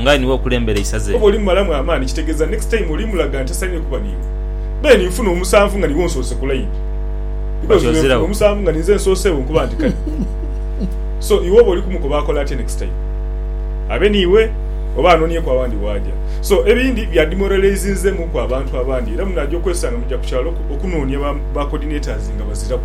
nga aye niwe okulembera eisaza Oba eryo. oli mumalamu amaani kitegeeza next time oli mulaga nti asainire kuba niiwe. Then nfuna omusanvu nga niiwe onsoose ku line because Kati bwenfuna ozirawo. omusanvu nga ninze nsooseewo nkuba nti kale so iwe oba oli kumukoba akole atya next time abe niiwe oba anonieku awandi waaja so ebindi bya demoralizinzemu ku abantu abandi era munaja okwesanga muja ku kyalo okunoonia ba ba coordinators nga baziraku.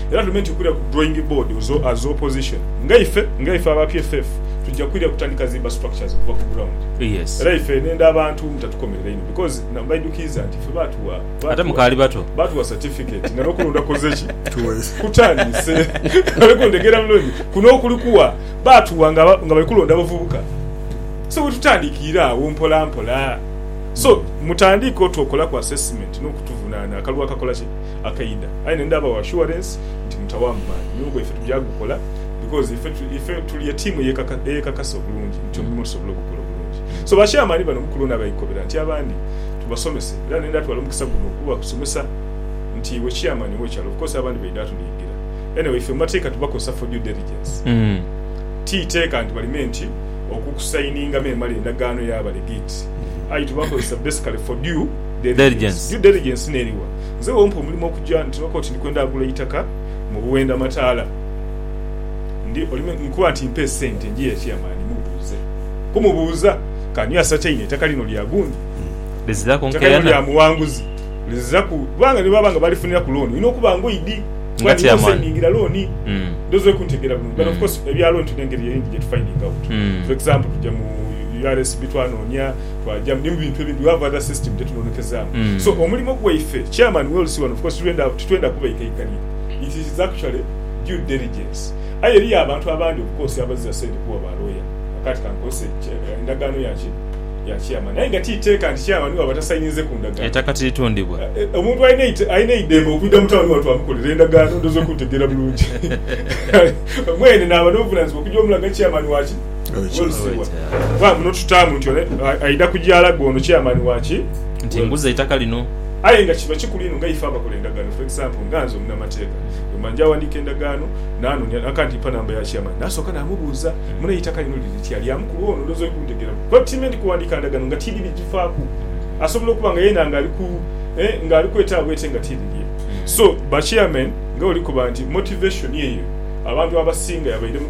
Era ndume nti okwira ku drawing board as opposition nga ife nga ife aba PFF tuja kwira kutandika zimba structures okuva ku ground. Era ife nenda abantu mutatukomerera inho because na mbaidukiiza nti ife batuwa batuwa certificate nga nokulonda koze ki? kutandise oli kuntegera bulungi kuno okuli kuwa batuwa nga nga bali kulonda bavubuka so wetutandikiira agho mpola mpola so mutandiike otwokolaku assessment nokutuvunana akalulu akakola ki? akaidha aye nendhabawo assurance nti mutawamu maani nyowe bwaife tugya gukola because ife tuli etiimu eyekakasa obulungi nti omulimo tusobola ogukola obulungi so ba chairman bano mukulu ono abaikobera nti abandi tubasomese era nenda twala omukisa guno okubasomesa nti iwe chairman owekyalo of course abandi baidha tunhigira anyway ife mumateeka tubakozesa for due diligence ti teeka nti baleme nti okukusayiningamu emale endagaano yaba legit aye tubakozesa basically for due diligence, due diligence neriwa? Nze bw'ompa omulimo okugya nti looka oti ndi kwenda agula eitaka mu Buwenda Mataala, ndi oli me nkuba nti mpa esente njiye Chairman mubuuze. Kumubuuza Kanywa Asataine eitaka lino lya gundi? Eitaka lino lya Muwanguzi? Liziza ku kubanga ni bwaba nga balifuniraku looni olina okuba nga oidhi kuba niiwe osayningira looni. Ndhowooza oli kuntegeera bulungi. But of course ebya looni tulina engeri eyindhi gye tufaidinga out. For example tugya mu URSB twanoonia. Twajamu ni mu bintu ebindi, we have other system gyetunonekezaamu. So omulimo gwaife, Chairman we will see one of course titwenda kubaikaikania, it is actually due diligence. Aye eriyo abantu abandi of course abazira sente kuwa ba lawyer, kati kankozese endagaano ya ki? ya Chairman. Aye nga ti teeka nti Chairman bwaba tasayininze ku ndagaano. Eitaka tiritundibwa. Omuntu alina eidembe okwidha mu town wano twamukolera endagaano, ndhooza okuntegeera bulungi. Mwene naaba n'obuvunanizibwa okugya omulaga Chairman wa ki? Kuba muno tutaamu nti ole aidha kujaala gwe ono chairman waki. Nti nguza eitaka lino. Aye nga kiba kikulu inho nga ife abakola endagaano for example nga nze omunamateeka bwemba nja awandiika endagaano nanonia akanti mpa namba ya chairman nasooka namubuuza mune eitaka lino liri litya lya mukulu ono ndhooza oli kuntegeera kuba by time ndikuwandiika ndagaano nga tiidhi bijifaaku asobola okuba nga yeena nga ali ku eh nga ali kwetaawo ete nga tiidhi lye so ba chairman nga bwoli koba nti motivation eyo abantu abasinga yabaire mu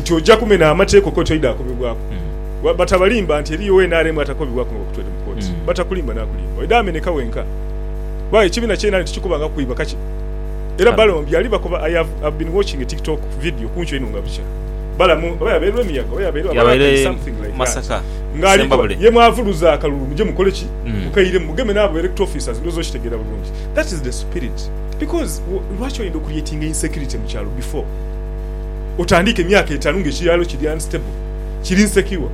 nti oja kumena amateeka okwo toidha akobebwaku batabalimba nti eriyo nrm atakobebwaku nga bakutwere mu kooti batakulimba nakulimba oidha ameneka wenka kuba ekibina kyenanti tikikoba nga kwiba kaki era balamu byali bakoba i have been watching a tiktok video kuncu eno nga bukya balamu oba yabaire lwemiyaga oba yabaire something like that nga alikoba ye mwavuluza akalulu muje mukoleki mukairemu mugeme nabo electoral officers ndowoza okitegera bulungi that is the spirit. Because lwaki oyenda okuliyetinga insecurity mukyalo before otandiike emyaka etanu nga ekyalo kiri unstable kiri insecure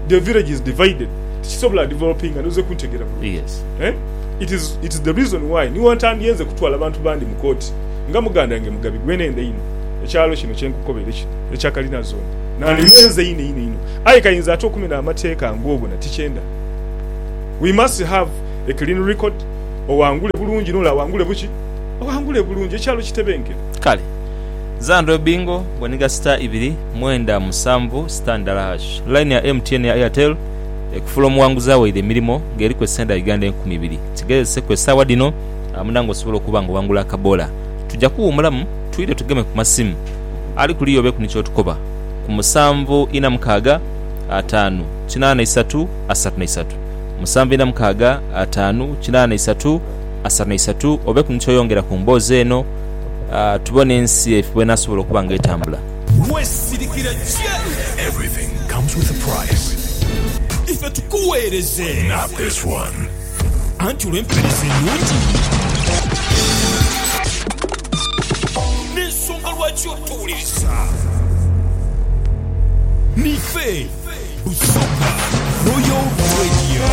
the village is divided tikisobola developinga noze kuntegera bulungi eeh it is it is the reason why ni wantandie nze kutwala bantu bandi mu kooti nga mugandange mugabi gwe nenda inho ekyalo kino kyenkukobere kino ekya kalina zone nandimenze inho inho inho aye kayinza ate okumena amateeka ngobona tikyenda we must have a clean record Owangule bulungi n'ole awangule buki? Owangule bulungi, ekyalo kitebenkere. Kale. Zandra Obingo, bwoniga star ibiri mwenda musanvu star ndala hash. Line ya MTN ya Airtel ekufula omuwanguzi awaire emirimo nga eriku esente dha Uganda enkumi ibiri. Kigezese ku esaawa dhino amuna nga osobola okuba nga owangula akabola. Tuja kuwumulamu twidhe tugeme ku masimu. Ali kuliya obeku ni kyotukoba ku musanvu ina mukaaga ataanu kinaana isatu asatu na isatu. musanvu ina mukaaga ataanu kinaana isatu asatu na isatu obeku ni kyoyongera ku mboozi eno tubone ensi efe bwenasobola okuba nga etambula. Wesirikire kye ife tukuweereze anti olw'empeereza enungi n'ensonga lwaki otuwuliriza. Niife. Busoga Royal Radio.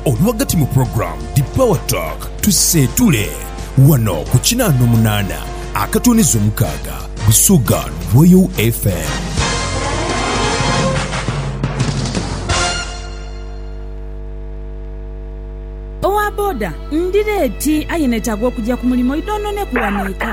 Olwagati mu program The Power Talk tuseetule wano ku kinaana omunaana akatooneza omukaaga Busoga Royal FM. Owa boda ndira eti aye netaaga okugya ku mulimo idhonhoneku wano eka.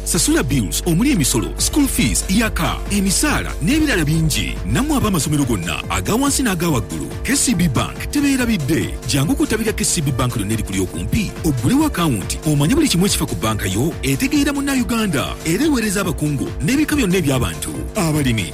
Sasula bills omuli emisolo, school fees, ya car, emisaala n'ebirala bingi. Nammwe ab'amasomero gonna aga wansi n'aga waggulu, KCB Bank tebeerabidde. Jangu ku ttabi lya KCB Bank lyonna erikuli okumpi oggulewo akawunti omanye buli kimu ekifa ku bbanka yo etegeera Munnayuganda era eweereza abakungu n'ebika byonna eby'abantu, abalimi,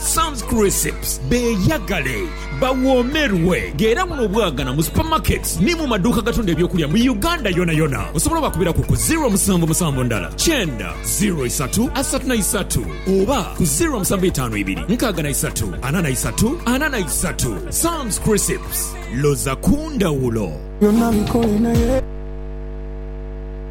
Sam's Crisps, beeyagale, bawoomerwe nga era buno obwagana mu supamaketi ni mu maduuka agatunda eby'okulya mu Uganda yonayona. Osobola obakubiraku ku ziro musanvu musanvu ndala kyenda ziro isatu asatu na isatu oba ku ziro musanvu itaanu ibiri nkaaga na isatu ana na isatu ana na isatu. Sam's Crisps, loza ku ndhawulo!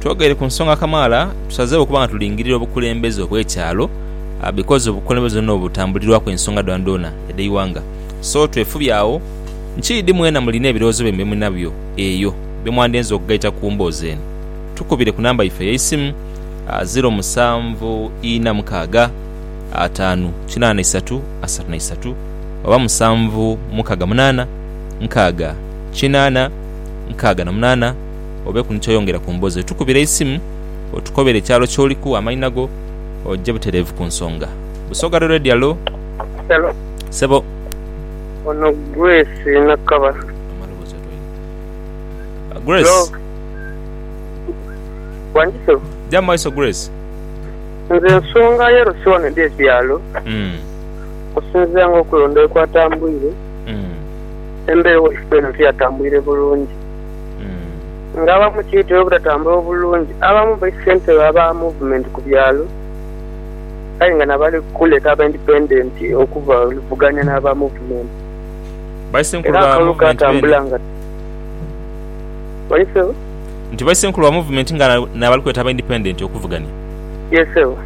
Twogeire ku nsonga kamaala tusazeewo okuba nga tulingirira obukulembeze obw'ekyalo bikozi obukulembeze buno butambulirwaku ensonga dhoonadhoona edh'eighanga. So twefubye agho nki idi mwena mulina ebirowoozo byaimwe bye mulinabyo eyo bye mwandyenze okugaita ku mboozi eno tukubire ku namba yaife ey'eisimu, ziro musanvu ina mukaaga ataanu kinaana isatu asatu na isatu oba musanvu mukaaga munaana nkaaga kinaana nkaaga na munaana. obeeku ni ky'oyongera ku mboozi eyo, tukubire eisimu otukobere ekyalo ky'oliku, amaina go, oje butereevu ku nsonga. Busoga Rural Radio, Halo. Hello. Ssebo. Ono Grace Nakabala. Amaloboozi otwaire. Grace. Hello. Wangi ssebo. Gya mu maiso Grace. Nze ensonga y'erosi wano eri ekyalo Mm. okusinziira ng'okulonda bwe kwatambwire, Mm. embewo yaife eno tiyatambwire bulungi. nga abamu kiitera obutatambula bulungi abamu bali ssentebe aba muvumenti ku byalo aye nga nabali kuleta aba indipendenti okubavuganya n'aba muvumenti era akalulu katambula nga Bali ssebo? Nti baisenkulu ba muvumenti nga nabali kuleta aba indipendenti okuvuganya Yee ssebo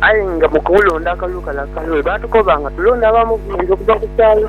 Aye nga mukulonda akalulu kale akalungi baatukoba nga tulonde aba muvumenti okuva ku kyalo.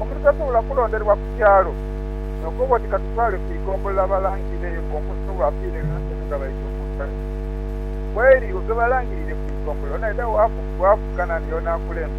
omuntu tasobola kulonderwa ku kyalo n'okoba oti katutwale ku igombolola balangirire eyo ku omuntu oba afiire ghansi eno nga baidha okumuzika. Kweri olwo lwebalangirire ku igombolola, onaidha waaku bwaafuka naani y'onaakulembera.